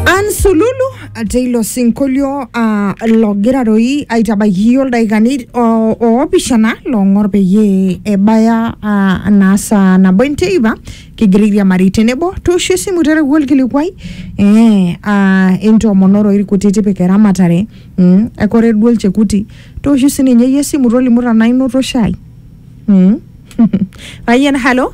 Ansululu ate ilo sinkolio uh, logira doi aitabaiki iyiook ildaikani o- oopishana loong'or peyie ebaya uh, naa saa nabo enteipa kigira airiamari tenebo tooshu esimu tereu olkilikuai eh, uh, entoomonoro irkuti tipika eramatare mm, ekore duo olchekuti tooshu sininye iyie esimu tolimu tanaa inoto shai mm. Payian halo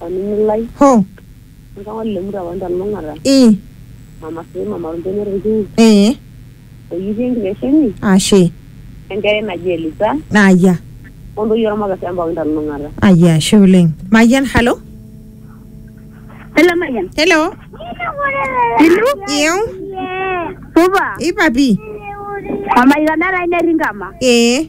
Olning'o lai, Ho. oltung'ani le murua wanta lulung'ata, I. mama sii mama olbene olkiu, Ee. oyipi enkitesheni, Ashe. Enkerai naji Elisa, Aya. o ntoyie olmaka sii empaka inta lulung'ata. Aya, ashe oleng. Mayian, halo. Hello, Mayian. Hello. Hello. Iu. Supa. Ipa pi. Mama Ikanara ai netii nkama. Ee.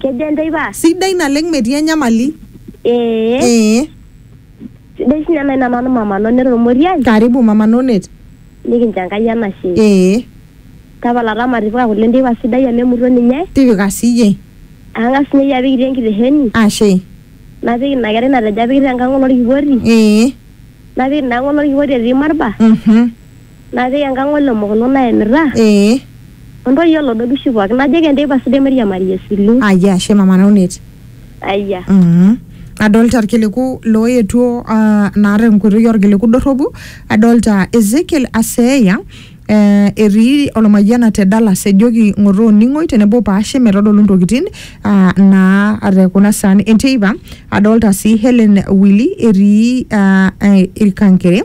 Kejo enteipa? Sidai naleng metii enyamali. Ee. Ee. Sidai sinye nai namanu mama Nonet Olmoriai. Karibu mama Nonet. Nikincho Enkai enashe. Ee. Tapala taa matipika kule enteipa sidai amu emuto ninye. Tipika siiyie. Ang'as sinye iyie apik itii enkitesheni. Ashe. Napik ina kerai natejo apik te nkang olorkipoti. Ee. Napik ina ang olorkipoti etii Marba. Uhum. Napik enkang o lemokono naemita. Ee. O ntoyie o lodobishi pooki. Najoki enteipa sidai mairiamari esilu. Ayia ashe mama Naunet. Ayia. Mm. Adolta irkiliku looetuo ah, naa tenkoitoi orkiliku dorropu, adolta Ezekiel Aseeya eh, etii Olmayiana te Dallas ejoki ng'oto oning'oi tenebo paashe metodolu ntokitin ah, naa te kuna saan enteipa. Adolta sii Hellen Willy etii ah, Ilkankere.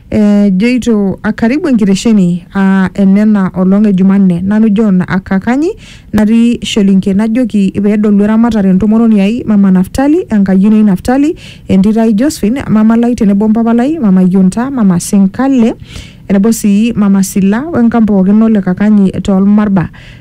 Ejoito a karibu enkitesheni aa enena olong e Jumanne, nanu John Akakanyi natii Sholinke najoki pee edolu eramatare entomononi ai Mama Naftali, enkayioni ai Naftali, entito ai Josephine, mama lai tenebo mpapa lai, Mama Yonta, Mama Senkale tenebo sii Mama Sila o enkamp pooki o le Kakanyi too Lmarba.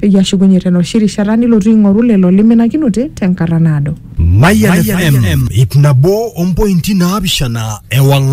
peyie ashukunye tenoshi rishata nilotu aing'oru lelo liminakinote tenkata naado. Mayian FM ip nabo ompointi naapishana ewang'an.